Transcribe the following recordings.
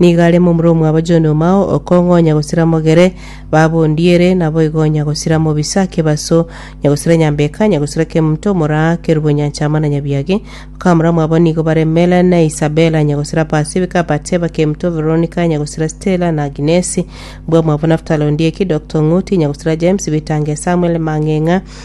Nigo are momura omwabo John Omao, okong'u onya gosira mogere, baba ondiere, naboigo onya gosira mobisa, kebaso, onya gosira nyambeka, onya gosira kemunto, omoraa, kerubo, nyancha, ama na nyabiagi. Bakamura mwabo nigo bare Mela na Isabella, onya gosira Pasifika, Bateba, kemunto, Veronika, onya gosira Stella, na Aginesi. Mbwa mwabo Naftali Ondieki, Doctor Ong'uti, onya gosira James, Bitange, Samuel, Mang'eng'a,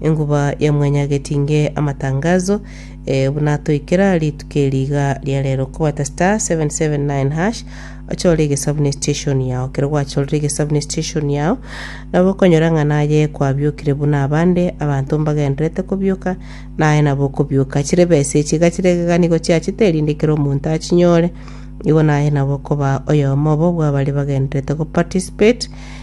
Enguba ya mwanyagetinge amatangazo eh, buna toikera rituko eri iga ria rero kobata star 779 ochore egesabu ne station yao kero gwachorire egesabu ne station yao nabo okonyora ng'a naye kwabiokire buna abande abanto mbagenderete kobioka naye nabo okobioka chire besa echi iga chire egeganigo chiachete erinde kero omonto achinyore igo naye nabo okoba oyomo obo bw'abare bagenderete go participate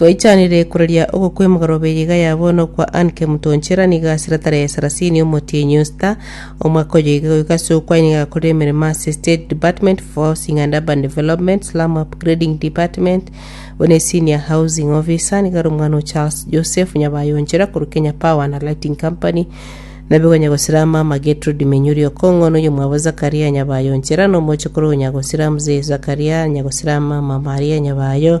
Twaichanire koraria oko kw'emegoroba eye iga ya bono okwa Annke Mutonchera nigo asire tarehe sarasini omotienyi o Star omwaka oyo iga goika ase okwo aye nigo agakorire emeremo ase Estate Department for Housing and Urban Development, Slum Upgrading Department, buna eSenior Housing Officer, nigo are omwana o Charles Joseph Nyabayonchera korwa Kenya Power and Lighting Company, nabe konya gosira mama Gertrude Menyuri Okong'o noyo mwabo Zakaria Nyabayonchera na omochokoro onya gosira Mzee Zakaria Nyagosira mama Maria Nyabayo,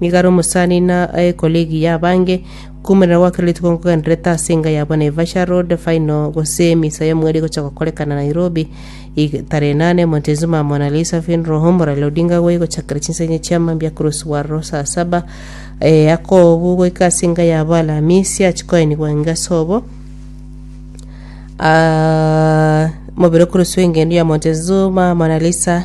Nigo are omosani na aye colleague y'abange. Koumorana gwa kera rituko nkogendererete ase enga yabo Naivasha road, final, gose misa y'omweri egocha gokorekana Nairobi. Ig. Tarehe inane, Montezuma Mona Lisa Funeral Home, Raila Odinga agwo egochakera chinsenye chia mambia akoroswa bwaroro saa saba. Eh, akoobwo goika ase enga yabo Alamisi, achie koenigwa engeso obo. Ah, mobere okoroswa engendo ya Montezuma Mona Lisa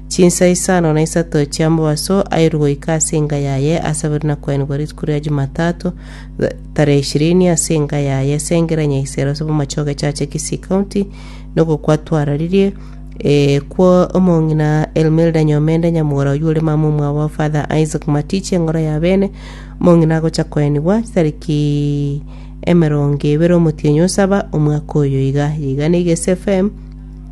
Chinsa isano na isato chi'ambabaso airwe goika ase enga yaye asabirwe na kwenigwa rituko ria Jumatatu, tarehe ishirini, ase enga yaye esengera Nyaisero ase bomache ogechacha Kisii County, nigo kwatwararirie eh, kwo omong'ina Elmilda Nyomende nyamogora oyio ore mama omwabo o Father Isaac Matichi eng'oro ya bene, omong'ina agocha kwenigwa tariki emerongo ebere omotienyi o saba omwaka oyo iga. Yaigana Igesi FM.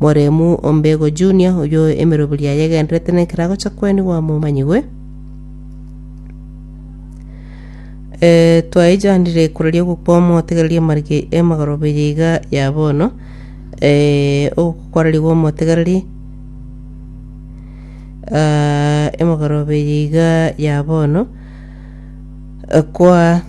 Moremu o Mbego Junior, oyio emeroberio yaye egendererete nekero agocha kwenigwa momanyigwe. Eh, twaichandire koraria ogokwa omotegereria marige emagoroberia iga ya bono eh, ogokwararigwa omotegereri ah, emagoroberia iga ya bono Eh, kwa